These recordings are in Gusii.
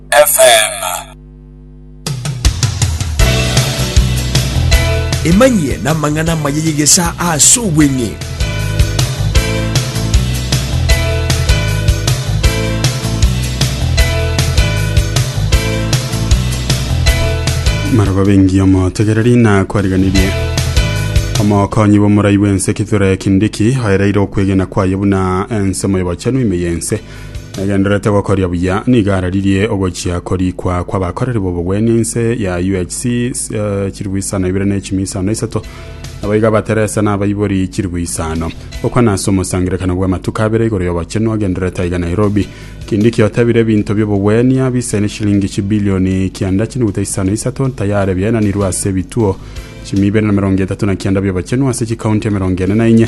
FM. Emanyie namang'ana amaya y'egesa ase obweng'e. maraba bengi omotegereri na kwariganirie omokonyi bw'omorai bw'ense kithure kindiki oereire okwegena kwaye buna ensemo y'obochenu ime y'ense Nagendererete gokoria buya nigo araririe ogochia korikwa kw'abakoreri b'obogwenia inse ya UHC eh, chilifu isano ibere ne chimi isano na isato naboigo abateresa na abaibori chilifu isano okwa nase omosangerekano bw'amatuko abere igoro y'obochenu agendererete aiga Nairobi kindi kiotebire ebinto by'obogwenia bisaine shilingi chibilioni kianda chinuguta isano isato tayare biaenanirwe ase ebituo chimi ibere na mirongo etato na kianda by'obochenu ase chikaunti emerongo ene na inye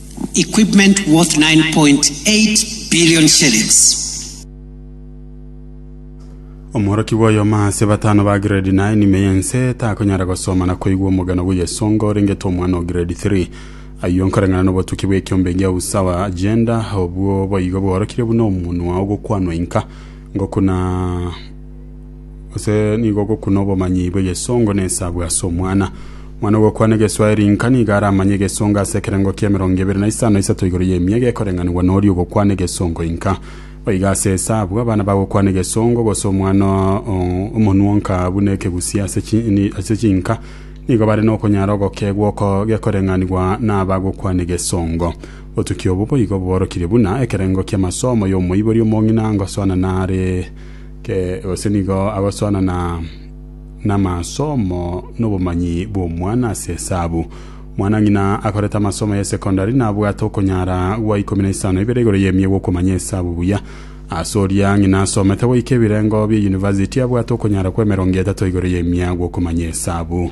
equipment worth 9.8 billion shillings. Omworoki bw'oyoma ase batano ba grade 9 ime y'ense takonyara gosoma na koigwa omogano bw'eyesonga orengete omwana o grade 3 ayio nkoreng'ana n'obotuki bw'ekiombe gia usawa agenda obwo boigo bworokire buna omonwa ogokwanwa inka ngokuna Gose nigo ogokuna obomanyi bw'egesongo na esabu ase omwana. Omwana ogokwana egeswaeri inka nigo aramanye egesongo ase ekerengo kia emerongo ebere na isano na isato igoro y'emia iga ekoreng'anigwa noria ogokwana egesongo inka. Boigo ase esabu, abana bagokwana egesongo gose omwana o- omonwonka buna ekegusia ase chi- ni- ase chinka nigo bare nokonyara ogokegwa oko gekoreng'anigwa nabagokwana egesongo. Obotuki obo boigo boborokirie buna ekerengo ki'amasomo y'omoibori omong'ina ngosoana nare Kee, gose nigo agosoanana namasomo nobomanyi bw'omwana ase esabu? Mwanang'ina akorete amasomo ye secondary nabwate okonyara gwa ikomi na isano ibere igoro y'emia gw'okomanya esabu buya. Ase oria ng'ina asomete goika ebirengo bie university abwate okonyara kw'emerongo etato igoro y'emia gw'okomanya esabu.